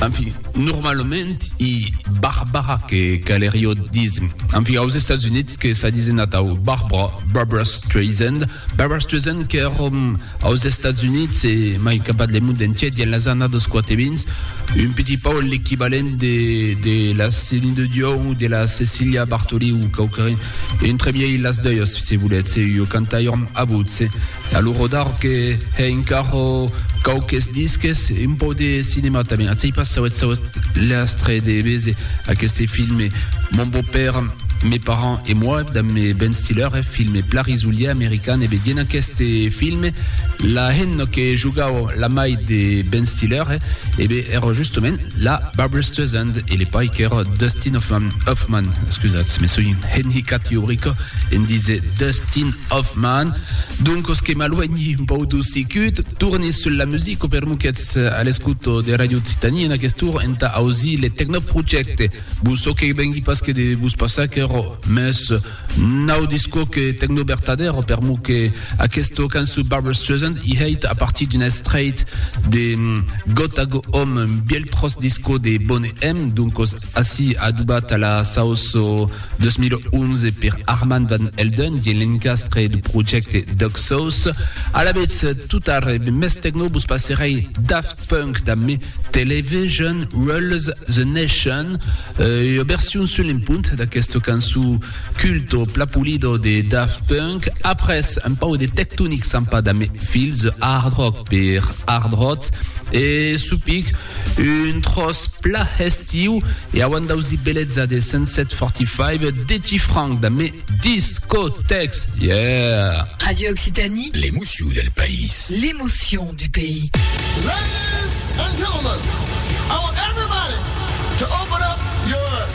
En fin, normalament i Barbara que calerio dism. En fin, aus Estats Units que s'a disen atau Barbara, Barbara Streisand, Barbara Streisand qu'èrom aus Estats Units e mai capat le mond entier dins las annadas 420, un petit pau l'equivalent de, de la Céline de Dion o de la Cecilia Bartoli o quauquarren, entre miei las doias, se voletz, e io cantaiòrm a votse. A lo rodar que hè encara quauques disques, un pauc de cinema tanben. Atzei pas sauet sauet l'astre de béser aqueste filme Mon beau-père, mes parents et moi damb Ben Stiller, eth filme pla risolier american. E ben, dient aqueste filme, la hemna que jogau la mair de Ben Stiller, e ben era justement la Barbra Streisand e le pair qu'era Dustin Hoffman, Hoffman, excusatz, me soi enhicat ua brica en díser Dustin Hoffmann, Doncos que m'aluènhi un pauc d'os sicut, torni sul la musica per mo qu'ètz a l'escuto de Ràdio Occitània en aquest torn entà ausir le Tecnoprojecte. Bon çò que vengui pas que de vos passar aquerò, mès nau disco que tecno vertadèro per mo que aquesta cançó Barbra Streisand i hèit a partir d'un estrèit de Gotta Go Home, un bièlh tròç disco de Boney M, doncos Ací, adobat a la saus 2011 per Armand Van Helden dins l'encastre du projècte Dog Sauce. Alavetz, tot arre, be mès tecno vos passerèi Daft Punk damb Me Television Rules the Nation, ua version sul en punt d'aquesta cançó Culto Plapulido de Daft Punk. Après, un pau de Tectonic Sampa damb Feel the Hard Rock per Hard Roth e Supic, Un tròç pla hestiu e auant d'ausi beleza de Sunset 45 Dechi Franck da me Discotex yeah! Radio Occitanie. L'emocion del país. L'emocion du pays. Ladies and gentlemen, I want everybody to open up your.